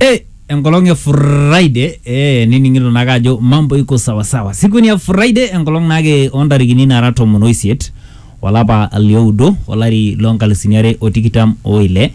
Eh, enkolong e Friday eh, nining'ito naake ajo mambo iko sawasawa. Siku ni ya Friday enkolong naake ontarikini nara tomon oisiet olapa lioudo olari lonkalusuni are o tikitam oile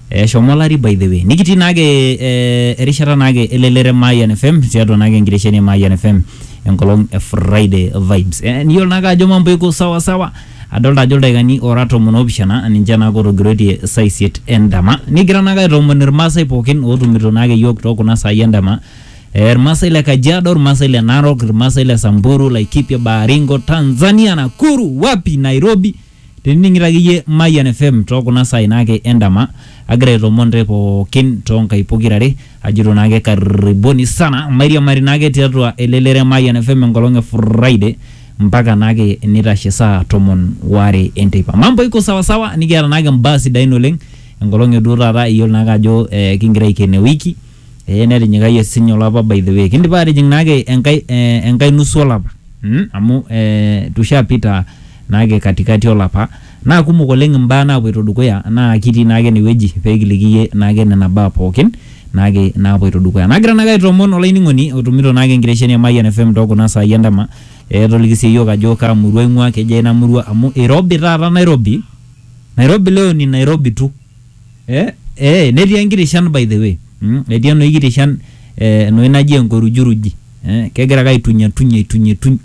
eshomo olari by the way nikitii naake eh, erishata naake elelere Mayan FM tiatua naake enkitesheni e Mayan FM enkolong e Friday vibes eh, niyiolo naake ajo mambo iko sawasawa Adolita ajo ildaikani oora tomon oopishana ninche naake ootogiroitie saa isiet endama. Nikigira naake aitoomon ilmaasai pookin ootumito naake iyiook too kuna saai endama. Ilmaasai le Kajiado, ilmaasai le Narok, ilmaasai le Samburu, Laikipia, Baringo, Tanzania, Nakuru, wapi, Nairobi tenining'ito ake iyie Mayian FM too kuna saai naake endama agira aitoomon intae pookin too nkaik pokira are ajito naake karibuni sana mairiamari naake tiatua elelero e Mayian FM enkolong e Friday mpaka naake nitashe saa tomon waare enteipa. Mambo iko sawa sawa nikiata naake mbaa sidain oleng enkolong e duo taata iyiolo naake ajo eh, kingira aiken ewiki eh, netinyikayie sinye olapa by the way. Kindipa atijing naake enkae eh, enkae nusu olapa mm, amu eh, tushapita naake katikati olapa. Naa kumok oleng imbaa naapuoito dukuya naa kitii naake ene wueji pee kiliki iyie naake nena baa pooki naake naapuoito dukuya. Nagira naake aitoomon olainining'oni otumito naake enkitesheni e Mayian FM too kuna saai endama ee toliki sii iyiook ajo kaa murua ing'uaa, kejaa ina murua amu irobi taata Nairobi, Nairobi leo ni Nairobi tu. Ee netii enkiti shan by the way, etii enoshi kiti shan enoshi naji enkorujuruji, kegira ake aitunyatuny aitunyituny.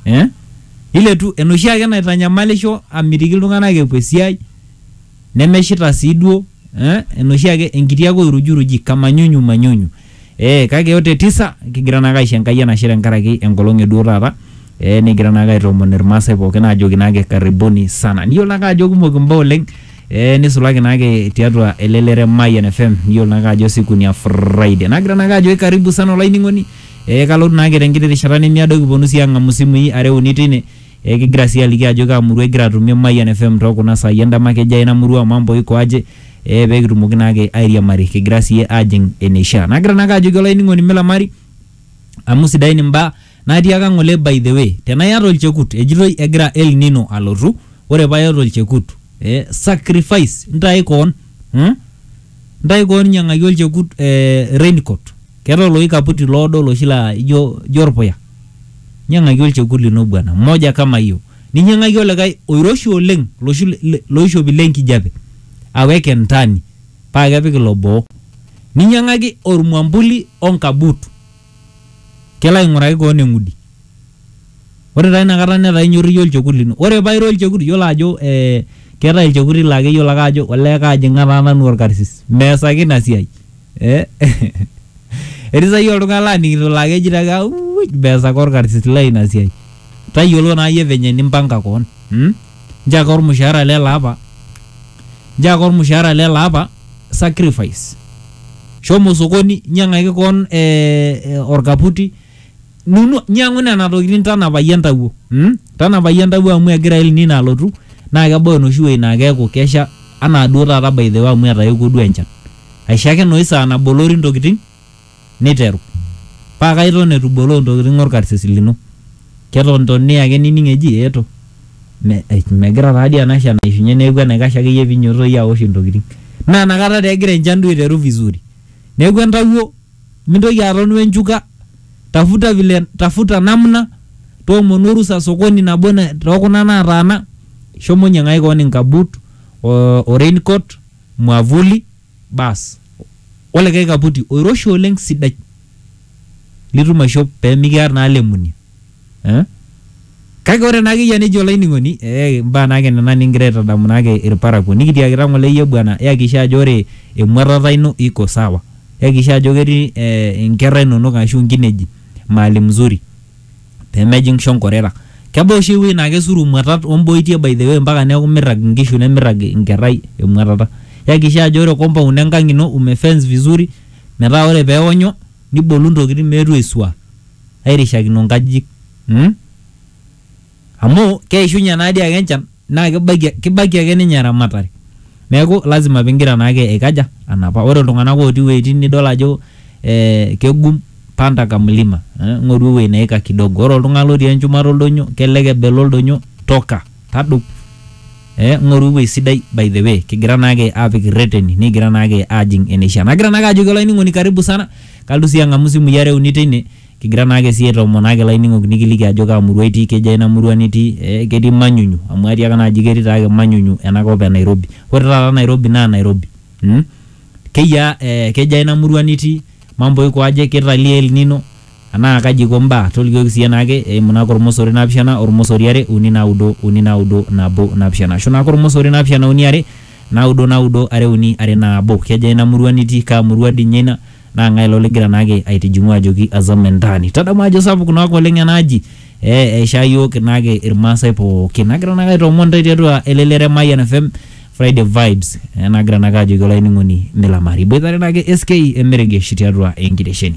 eh? iletu enoshi ake naitanyamalisho amitiki iltung'anak epuo esiai nemeshita sii duo eh? enoshi ake enkiti ake oirujuruji kamanyunyu manyunyu eh, kake yote tisa kigira naake aisho Enkai enashe tenkaraki enkolong eduo taata eh, nikigira naake aitoomon irmaasai pookin aajoki naake karibuni sana niyiolo naake ajo kumok imbaa oleng eh, nisulaki naake tiatua elelere Mayian FM niyiolo naake ajo siku ni ya Friday nagira naake ajoki karibu sana olainining'oni Ee kalotu naake te nkiti rishata nemiado kiponu sii ang'amu simui are uni tine ee kigira sii aliki ajo kaa murua igira atumie Mayian FM too kuna saai endama kejaa ina murua mambo iko aje ee pee kitumoki naake airiamari kigira sii aajing' eneishaa. Nagira naake ajoki olainining'oni milamari amu sidain imbaa natiaka ng'ole by the way tenaa iyata olchekut ejitoi egira El Nino alotu ore paa iyata olchekut ee sacrifice ntae koon. hmm? ntae koon nyiang'aki olchekut eh, raincoat keetae oloshi kaputi loodo oloshi laa ijo ijo orpuya nyiang'aki olchekut lino bwana moja kama hiyo ninyiang'aki olikae oiroshi oleng loshi le- le- loishopi le nkijape aweke ntani paa kepik ilo boo ninyiang'aki ormwambuli onkabuut kelo aing'uraki koon eng'udi. Ore taa ina kata netaa inyorru iyie olchekut lino. Ore paa ira olchekut iyiolo ajo ee keetae ilchekuti laa keyiolo ake aajo olee kaajing'a taa nanu orkarsis. Meesaki ina siai ee etii saa hii oltung'ani laning'ito laa keji taake auuj meesaki orkarsis lai ina siai. Tayiolo naa iyie venye nimpanga koon mm. nchaka olmushaara le laapa, nchaka olmushaara le laapa, sacrifice. Shomo sokoni nyang'aki koon ee olkaputi, nunu nyang'u nena tokitin tanapaki entawuo mm, tanapaki entawuo amu egira El Nino alotu naa kebau enoshi wuei naa keeku kesha anaa duo taata by the way amu etaewuo duo enchan. Aisho ake enoshi saa nabolori ntokitin. Neiteru, Paka iton eitu iboloo ntokitin olkarsis lino. Keton toni ake nining eji, Eeto. Me, eij, megira taa dii ena shan aishunye neaku enaikash ake iyie pee inyototo iyie aosh intokitin. Naa ina kata taa egira enchan duo aiteru vizuri. Neaku entawuo, mintoki aton we nchuka, tafuta vile, tafuta namna, toomonu orusa sokoni nabo too kuna naataana, shomo nyiang'aki kewon inkabuut o raincoat, mwavuli. baas olikae kaputi oiroshi oleng sidai litum aishop pee mikiar naa lemuni eh? kake ore naa akeyie nejo olainining'oni eh, imbaa naake nena nikigira aitadamu naake irparakuo nikitiakita ng'ole iyie bwana yakisha ajo ore emuatata ino iko sawa yakisha ajo ketii eh, inkerra inonok ashu inkineji mahali mzuri pee mejing shonkorera. Kebaa oshi ewueji naa kesuru imuatat o mboitie by the way mpaka neeku mirrag inkishu nemirrag inkerrai emuatata. Yakikisha ajo ore compound enkang ino ume fence vizuri metaa ore pee eonyo nibolu intokitin meetu aisua airishakino inkajijik. Amu keishunye naa dii ake enchan. Naa kibaiki kibaiki ake ninye eramatare. Neeku lazima pigira naake aikaja? Anapa. Ore iltung'ana otii iwuejitin nidol ajo ee kegum panda ka mlima. Ng'oru ewueji neika kidogo. Ore oltung'ani lotii enchumata oldonyo kelelek ebelo oldonyo toka, tadou. Ee ng'oru ewueji sidai by the way kigira naake apik irreteni nikigira naake ajing eneishaa. Nagira naake ajoki olainining'oni karibu sana, kalotu sii ang'amu isimui are uni teine Kigira naake sii aitomonaaki laining'ok nikiliki ajo kaa murua itii, kejaa ina murua nitii, ee ketii Manyunyu? Amu atiaka naa aji ketii taake Manyunyu ena kop e Nairobi. Ore taata Nairobi naa Nairobi. Mmh. Keyiaa ee kejaa ina murua nitii? Mambo iko aje? Keitalio El Nino? Anaa kaji eiko mbaa? Tolikioki siyie naake eimu naake olmosori naapishana, olmosori are, uni naudo, uni naudo, nabo, napishana. Ashu naake olmosori naapishana uni are, naudo naudo, are uni, are naabo. Kejaa ina murua nitii? Kaa murua dii ninye ina? naa ng'ae ilo ligira naake aitijing'u ajoki azam entaani tadamu ajo sapuk naake oleng ena aji eh, eishaa yiok naake irmaasai pookin nagira naake aitoomon intae tiatua elelero e Mayian FM Friday vibes eh, nagira naake ajoki olainining'oni milamari iboitare naake SK emeregesh tiatua enkitesheni